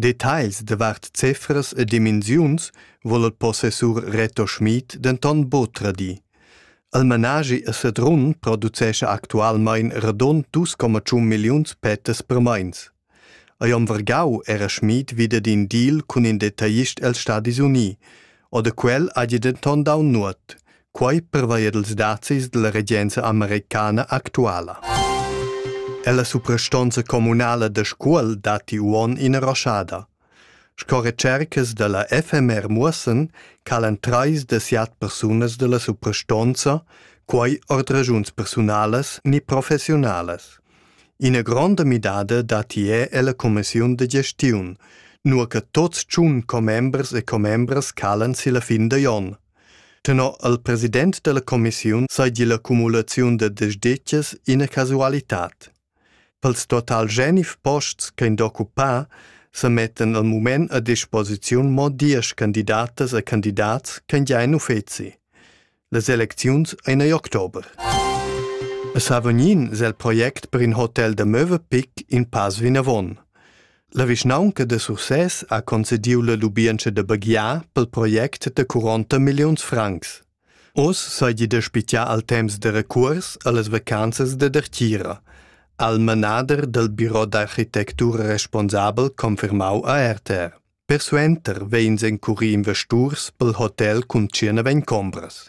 Detagls davart cefras e dimensiuns vul il possessur Reto Schmid denton buc tradir. Il managi a Sedrun producescha actualmein radund 2,1 milliuns pettas per meins. Ei om vargau era Schmid wieder d'in deal cun in detaglist els Stadis Uni, oder quel ha denton dau nuot, Quai pervaia dals dazis da la regenza americana actuala. È la suprastonza communala da Scuol datti uonn ina roschada. Sco recercas da la FMR muossan calan trais da siat persunas da la suprastonza, quai ord ragiuns persunalas ni professionalas. Ina gronda midada datti è è la commissiun da gestiun, nur che tots tschun commembers e commembras calan si la fin da jon. Tenor il president della commissiun sei di l'accumulaziun da desdetgas ina casualitad. Pels total genif posts ch'ein d'occupar se mettan al mument a disposiziun mo diesch candidatas e candidats ch'ein già in uffeci. Les elecziuns ein ei october. A Savognin s'è il project per in hotel da Möwepick in pass vinavon. La vischnaunca da Sursès ha concediu la lubientscha da baghiar pel project da 40 milliuns francs. Oz seigi da spitgiar al temps da recuors allas vacanzas da dartgira, al manader dal biro d'architectura responsabel confermau a RTR. Persuenter vegns encuri investurs pel hotel cun tschierna vegn combras.